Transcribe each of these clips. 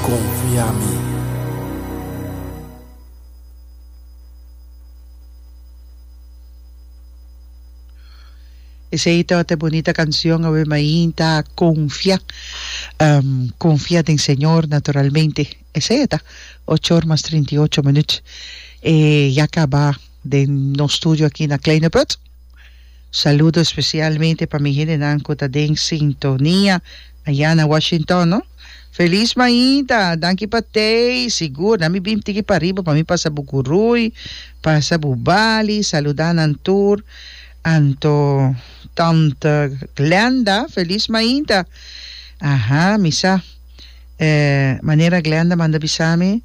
konfia mi. Esei ta ota e bunita kansion awe mainta konfia konfia den Señor naturalmente esei ta ocho or mas trinta i ocho minut e ya kaba den nos studio aki na Kleine Put. Saludo especialmente pa mi hendenan cu ta den sintonia aya na Washington no. Feliz maida, danki pa tei, sigur na mi bim tiki pariba pa mi pasa bu gurui, pasa bu bali, saluda nan tur, anto tante Glenda, feliz maida, aha mi sa eh manera Glenda manda bisami.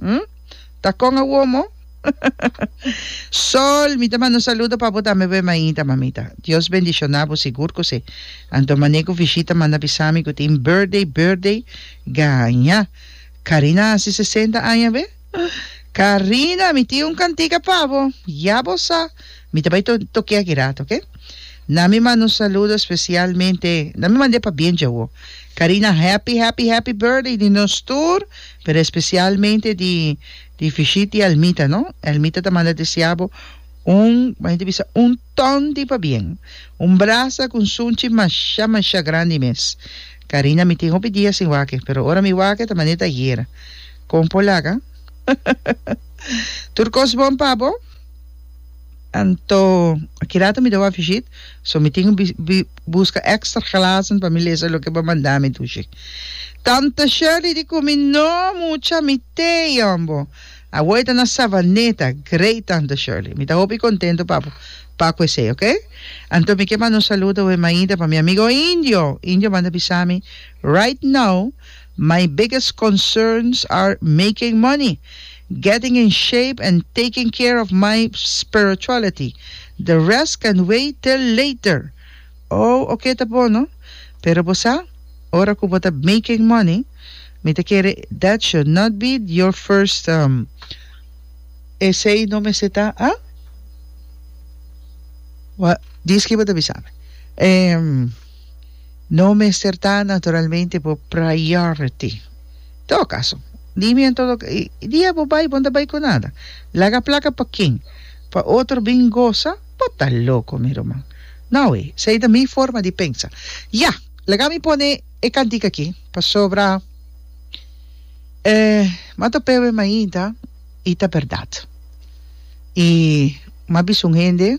Hm? Ta con awo mo? Sol, mi ta manda un saludo pa bo tambe boe mainta, mamita. Dios bendiciona bo sigur cu si. Anto mane cu Vishita manda bisami cu tin birthday, birthday gaña. Carina haci sesenta aña awe? Carina, mi tin un cantica pa bo. Ya bo sa. Mi ta bay toke aki rato, ok? Na mi manda un saludo especialmente, na mi mand'e pabien djawo. Carina, happy, happy, happy birthday di nos tur. Pero especialmente di di fishit di almita no almita ta manda desea bo un maya ta bisa un ton di pabien un brasa cu un sunchi masha masha grandi mes Karina mi tin hopi dia sin wak pero ora mi wak ta maneta ayera con por laga tur cos bon pa bo. Anto, akirato mi ta wak fishit, so mi tin ku buska ekstra glasen pa mi lesa loke bo manda mi dushi. Tanta Shirley di ku mi, No, mucha, mi te yon bo. Awor e ta na Savaneta. Great, tanta Shirley. Mi ta hopi kontento pa bo paku esei, ok? Anto mi ke manda un saludo wemaida pa mi amigo Indio. Indio manda bisa mi, Right now, My biggest concerns are making money, getting in shape and taking care of my spirituality. The rest can wait till later. Oh, ok ta bon no. Pero bo sa, ora cu bo ta making money, mi ta kere that should not be your first um Esey no mester ta, ah? Well, dis ki bo ta bisa mi. Ehm. No mester ta naturalmente bo priority. Todo caso, dime en todo ca-, e dia bo bay bo no ta bay cu nada. Laga placa pa ken? Pa otro bin goza? Bo ta loco mi ruman. No awe, esey ta mi forma di pensa. Ya, laga mi pone e cantica aki, pasobra e m'a topewe mainta y ta berdad. Y m'a bisa un hende.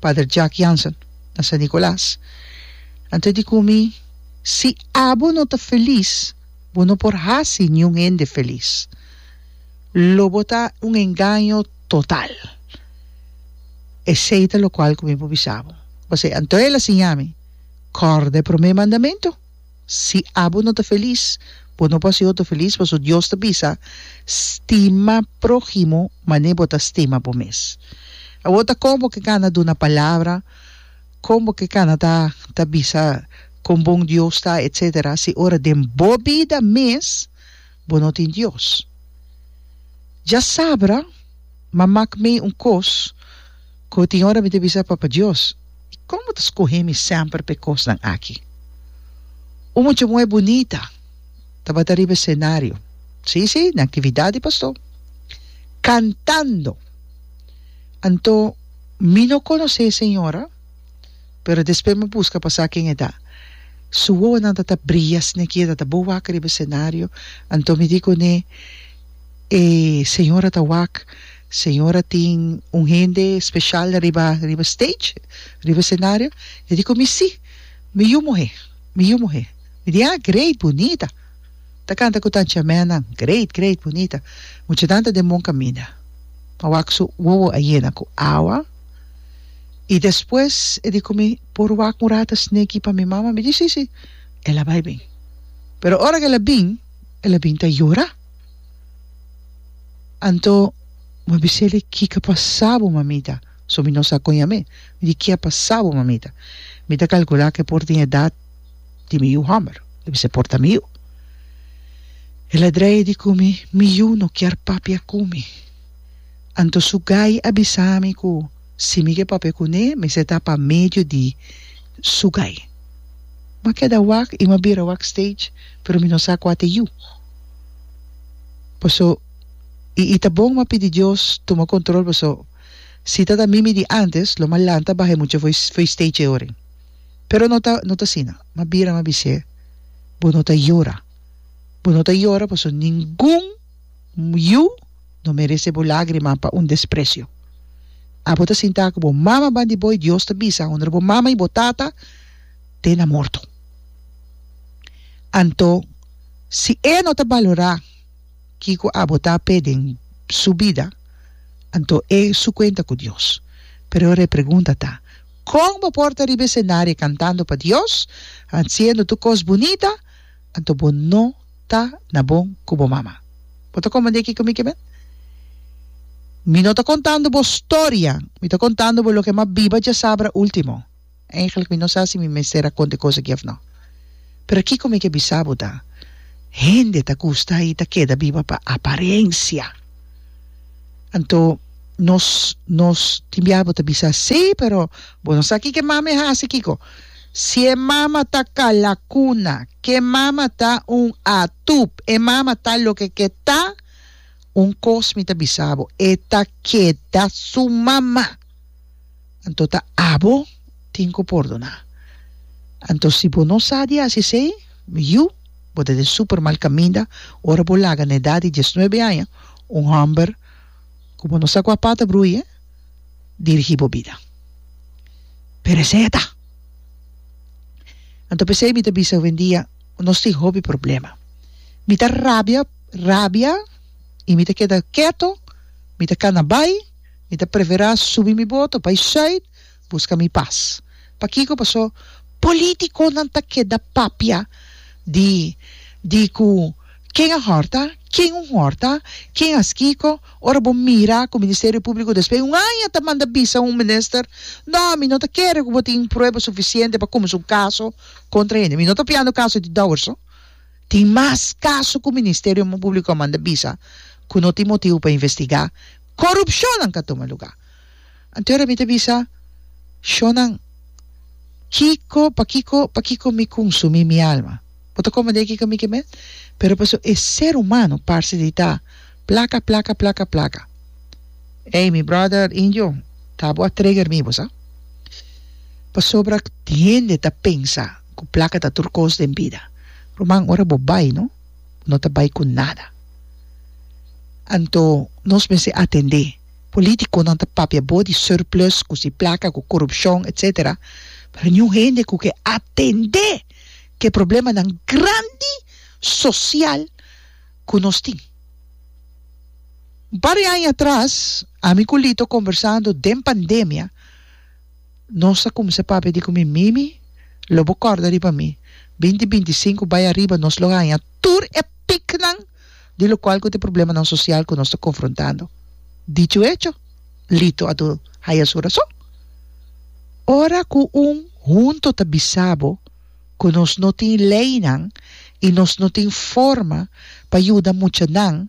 Pader Jack Jansen, na San Nicolas, anto e di cu mi, Si abo no ta felis, bo no por haci niun hende felis. Lo bo ta un engaño total. Esey ta locual cu mi por bisa bo. Pasey anto el a siña mi, Corda e prome mandamento. Si abo no ta felis, bo no por hasi otro felis, pasobra Dios ta bisa, Stima próhimo mané bo ta stima bo mes. Awor ta kon bo ke gana duna palabra, kon bo ke gana ta ta bisa kon bon Dios ta, etcétera, si ora den bo bida mes bo no tin Dios. Djasabra, M'a mak mei un kos. Cu tin ora mi ta bisa Papa Dios, y con bo ta scohe mi semper pa e cosnan aki? Un mucha muher bunita tabata riba e scenario, si, si, na actividad di pastor, cantando. Anto, mi no conoce e señora, pero despues mi busca pa sa ken e ta. Su wowonan tata bria sneakier, tata bo wak riba e scenario, anto mi di cune, E señora ta wak. Señora tin un hende special riba riba stage, riba scenario, e di cu mi si, mi yu muhe, mi yu muhe. Mi di, ah, great, bunita. Ta canta cu tanchi ameanan, great, great, bunita. Muchanan ta den bon caminda. A wak su wowo a yena cu awa y despues e di cu mi, por wak un rata sneki pa mi mama? Mi di, si, si. El a bay bin. Pero ora cu el a bin, el a bin ta yora. Anto bo a bisa el e kiko a pasa bo mamita, so mi no sa kon yam'e, mi di ke a pasa bo mamita, mi ta kalkula ke por tin edat di mi yu hòmber, lo bisa e por ta mi yu, el a dreia di ku mi, mi yu no kier papia ku mi, anto su gai a bisa mi ku si mi ke papia ku ne mester ta pa medio di su gai, mi a keda wak i mi a bira wak stage pero mi no sa kua ta e yu. Paso y y ta bon ma pidi Dios tuma control paso si ta ta mimi di antes lo ma lanta baha e mucha foi foi stage e oren pero no ta no ta asina ma bira ma bise bo no ta yora bo no ta yora paso ningun yu no merece bo lagrima pa un desprecio abo ta sinta cu bo mama ban di bo y Dios ta bisa hondra bo mama y bo tata te na morto anto Si e no ta balorá kiko abo ta apé den su bida, anto e su kuenta ku Dios. Pero repregunta ta, Kon bo por ta riba esenario kantando pa Dios, hasiendo tur kos bunita, anto bo no ta na bon ku bo mama? Bo ta komprendé kiko mi ke bend? Mi no ta kontando bo storia, mi ta kontando bo loke mas biba djasabra último. Eigenlijk mi no sa si mi mester a konta e kos aki òf no. Pero kiko mi ke bisa bo ta, hende ta gusta i ta keda biba pa aparensia. Anto nos nos tin biaha bo ta bisa sí, pero bo no sa ki ke mama e hasi kiko. Si e mama ta kalakuna, ke mama ta un atub, e mama ta loke ke ta, un kos mi ta bisa bo, e ta keda su mama. anto ta abo tin ku pordoná. Anto si bo no sa di hasi esei, mi yu, bo ta den super mal kaminda ora bo laga na edat di dies nuebe aña un hòmber ku bo no sa kua pata bruye dirigí bo bida. Pero esei a ta. Anto p'esei mi ta bisa hobendia, nos tin hopi problema. Mi ta rabia rabia i mi ta keda keto, mi ta kana bai. Mi ta preferá subi mi boto pa e Zuid buska mi pas. Pakiko? Pasó polítikonan ta keda papia di di ku ken a hòrta, ken un hòrta, ken has kiko. Ora bo mira ku Ministerio Públiko despues un aña ta manda bisa un minister, No, mi no ta kere ku bo tin prueba sufisiente pa kuminsá un kaso kontra hende. Mi no ta fiando kaso di Dowers-o. Tin mas kaso ku Ministerio Públiko a manda bisa ku no tin motibu pa investigá. Corupcionnan ka tuma lugá. Anto ora mi ta bisa, Shonan, kiko, pakiko, pakiko mi kunsumí mi alma? Bo ta komand'é kiko mi ke met? Pero paso e ser humano parse di ta plaka, plaka, plaka, plaka. Ey, mi brother Indio, ta bo a trigger mi bo sa. Pasobra hende ta pensa ku plaka ta tur kos den bida. Ruman, ora bo bai no. no ta bai ku nada. Anto nos mester atendé polítikonan ta papia abo di surplus ku si plaka ku korupshon etsetera pero niun hende ku ke atendé ke problemanan grandi sosial ku nos tin. Un par di aña atras ami ku Lito kombersando den pandemia. Nos ta kumsa papia di ku mi Mimi lo bo kòrda riba mi. Binti binti sinku bai ariba nos lo haña tur e piknan di lokual ku ta e problemanan sosial ku nos ta konfrontando. Dicho hecho, Lito a dor haña su rason. Ora ku un hunto ta bisa bo ku nos no tin leinan i nos no tin forma pa yuda muchanan,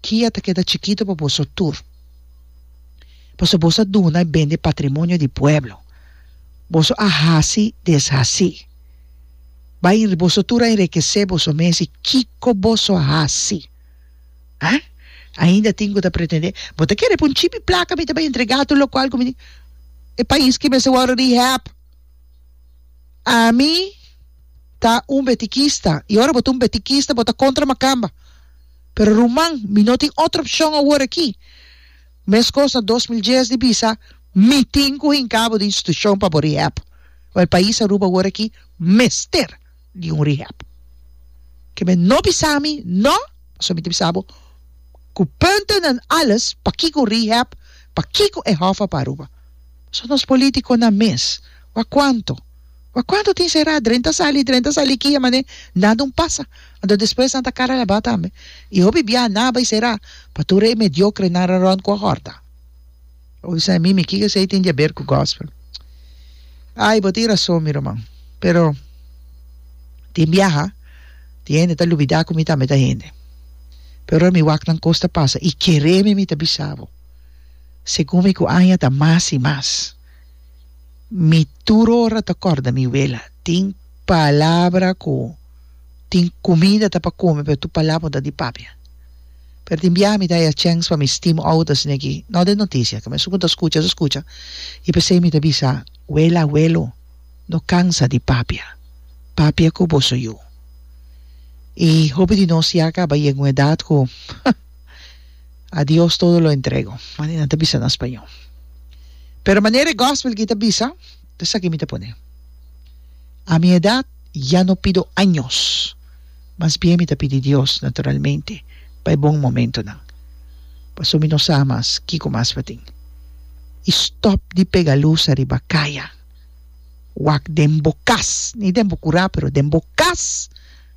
Kia ta keda chikito pa boso tur, pasobra boso a duna i bende e patrimonio di pueblo. Boso a hasi deshasi. Bai en, boso tur a enrikesé boso mes i kiko boso a hasi? Ha? Ainda tin ku ta pretendé, Bo ta kere pa un chipi plaka mi ta bai entregá tur lokual ku mi tin? E pais ke mester wòrdu rehab. Ami ta un betikista, i ora bo ta un betikista bo ta kontra Makamba. Pero ruman, mi no tin otro opcion awor aki. Mescos na dos mil dies di bisa, mi tin cu hincá bo di institucion pa bo rehab. Well, e pais Aruba awor aki mester di un rehab. Ke men no bisa mi, no, pasobra mi ta bisa bo cu punten en alles, pakico un rehab, pakico e Hoffa pa Aruba? Pasobra nos politiconan mes, wak cuanto? Ma cuanto tin será, dren ta sali, dren ta sali kia mané, nada un pasa. Anto despues nan ta cara labá tambe. I hopi biaha nan a bai será pa tur e mediocrenan rorond cu a horta. Bo bisa na mi, mi kiko esei tin di haber cu gospel? Ay, bo tin razon mi ruman. Pero tin biaha tin hende ta lubida cu mi tambe ta hende. Pero ora mi wak nan cos ta pasa, i kereme mi ta bisa bo, segun mi cu aña ta mas i mas. Mi tur ora ta kòrda mi wela, tin palabra ku tin kumida ta pa kume pero tur palabra no ta di papia. Pero tin biaha mi ta haya chèns pa mi stim ouders ne aki, no den notisia, ke mester ku ta skucha su skucha, i p'esei mi ta bisa, Wela, awelo, no kansa di papia. Papia ku boso yu. I hopi di nos ya a kaba yega un edat ku A Dios todo lo entrego, mane nan ta bisa na spañó. Pero manera e gòspel ki ta bisa, ta esaki mi ta pone. A mi edat ya no pido años, mas bien mi ta pidi Dios naturalmente pa e bon momentonan, pasobra mi no sa mas kiko mas pa tin. I stòp di pega lus ariba kaya, wak den bo kas, ni den bo kurá pero den bo kas!